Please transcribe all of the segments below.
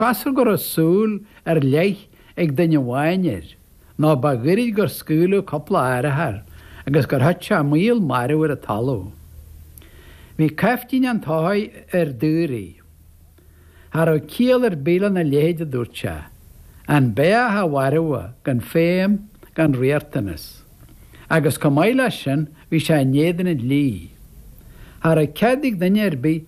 Cosúil go raibh súil ar leith ag duine amháin air, nó ba ghairid gur scaoileadh cúpla urchar agus gur thit sé maol marbh ar an talamh. Bhí caiftín an tsoithigh ar daoraí. Cha raibh ciall ar bith lena leithéid, a dúirt sé. An beathach a mharú gan feidhm, gan riachtanas. Agus chomh maith leis sin, bhí sé in éadan an dlí. Cha raibh cead ag duine ar bith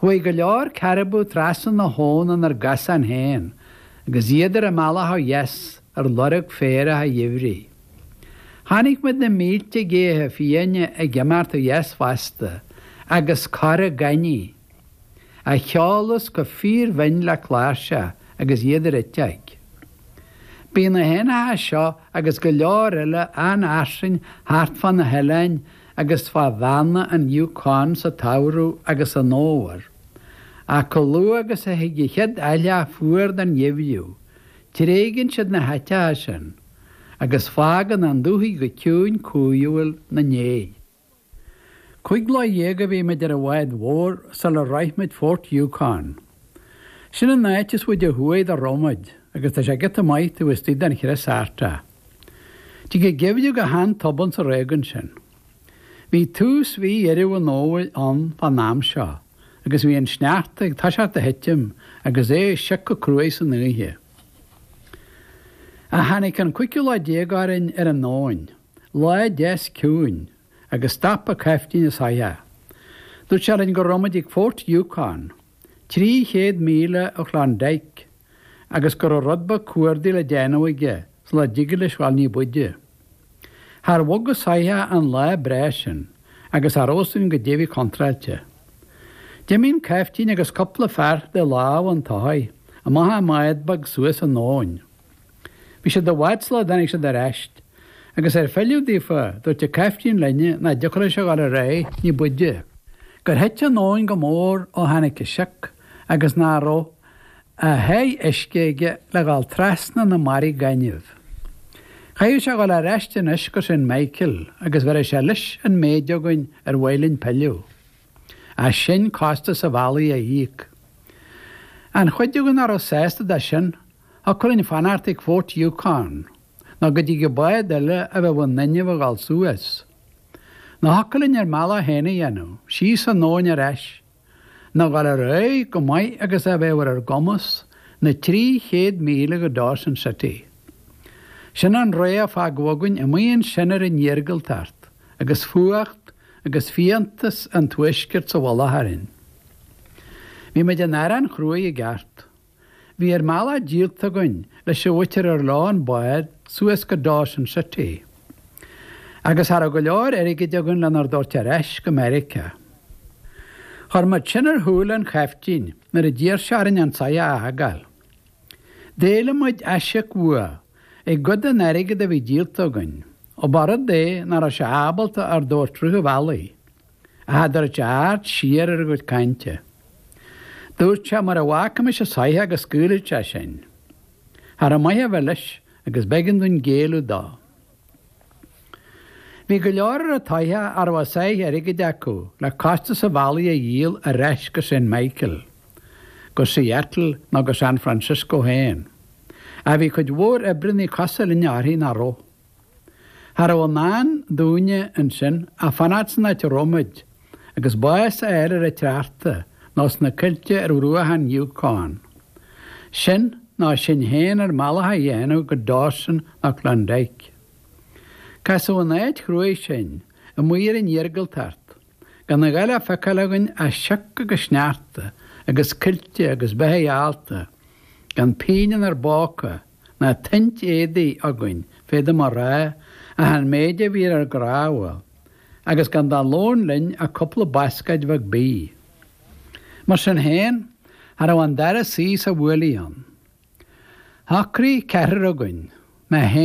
Chuaigh go leor caribou trasna na habhann inár gcosán féin agus iad ar a mbealach ó dheas ar lorg féarach an gheimhridh. Chonaic muid na mílte géacha fiáine ag imeacht ó dheas fosta agus corra gainimhe a cheolas chomh fíorbhinn le cláirseach agus iad ar eiteog. Bíonn na héanacha seo agus go leor eile an-fhairsing thart fá na hoileáin agus fá bheanna an Yukon sa tsamhradh agus san fhómhar, ach chomh luath agus a thig an chéad aithleá fuar den gheimhreadh, tréigeann siad na háiteacha sin, agus fágann an dúthaigh go ciúin cumhúil na ndéidh. Cúig lá dhéag a bhí muid ar an bhád mhór sular shroich muid Fort Yukon. Sin an áit is faide ó thuaidh dá raibh muid, agus tá sé giota maith taobh istigh den chrios Artach. Tig an geimhreadh go han-tobann sa réigiún sin. Bhí tús mhí Dheireadh an Fhómhair ann fán am seo agus bhí an sneachta ag toiseacht a thitim agus é ag siocadh cruaidh san oíche. Ach tháinig an cúigiú lá déag orainn ar an abhainn, lá deas ciúin, agus stop an caiftín an soitheach. Dúirt sé orainn go raibh muid ag Fort Yukon trí chéad míle ó Chlondyke agus go raibh rud beag cuardaigh le déanamh aige sula dtigeadh leis dhul ní b'fhuide. Char bhog an soitheach an lá breá sin agus thar ós in go deimhin contráilte. D'imigh an caiftín agus cupla fear de lámha an tsoithigh amach i mbád beag suas an abhainn. Bhí siad i bhfad sula dtáinig siad ar ais agus ar pilleadh daofa dúirt an caiftín linne nach dtiocfadh leis a dhul ar aghaidh ní b'fhuide, gur thit an abhainn go mór ó tháinig an sioc agus nach raibh a sháith uisce aige le dhul trasna na mbarraí gainimh. Chaithfeadh sé a dhul ar ais anois go St Michael agus bhéarfadh sé leis an méid againn ar mhaith linn pilleadh. Ach sinn costas an bhealaigh a íoc. An chuid againn nach raibh sásta de sin thiocfadh linn fanacht ag Fort Yukon nó go dtigeadh bád eile a bheadh in inmhe a dhul suas. Nó thiocfadh linn ár mbealach féin a dhéanamh, síos an abhainn ar ais. Nó dhul ar aghaidh chomh maith agus a bheadh ar ár gcumas na trí chéad míle go Dawson City. Sin an rogha a fágadh againn amuigh ansin ar an iargúltacht agus fuacht agus fiántas an tuaiscirt sa mhullach orainn. Bhí muid in arán chruaidh i gceart. Bhí ár mbealach díolta againn leis an mhuintir ar leo an bád suas go Dawson City agus cha raibh go leor airgid againn lenár dtabhairt ar ais go Meiriceá. Chuir muid sin ar shúile an chaiftín nuair a d'iarr sé orainn an soitheach a fhágáil. D'éiligh muid aisíoc uaidh i gcuid den airgead a bhí díolta againn, ó ba rud é nach raibh sé ábalta ár dtabhairt rith an bhealaigh. ach cha dtabharfadh sé aird siar ar ár gcuid cainte. Dúirt sé mura bhfágfaimis an soitheach go scaoilfeadh sé sinn. Cha raibh maith a bheith leis agus b'éigean dúinn géilleadh dó. Bhí go leor ar an tsoitheach a raibh a sáith airgid acu le costas an bhealaigh a dhíol ar ais go Saint Michael, go Seattle nó go San Francisco féin. Ach bhí cuid mhór oibreannaí cosúil linne uirthi nach raibh. Cha raibh i ndán dúinne ansin ach fanacht san áit a raibh muid agus bás a fháil ar an tsneachta nó sna coillte ar bhruacha an Yukon. Sin nó sinn féin ár mbealach a dhéanamh go Dawson nó Klondike. Casadh in áit chruaidh sinn, amuigh ar an iargúltacht, gan a dhath le feiceáil againn ach sioc agus sneachta agus coillte agus beithigh allta gan pingin inár bpóca, ná tointe éadaigh againn, féadaim a rá, ach an méid a bhí ar ár gcnámha, agus gan de lón linn ach cúpla bascáid bheag bídh. Mar sin féin, cha raibh an dara suí sa bhuaile ann. Shocraigh ceathrar againn, mé féin,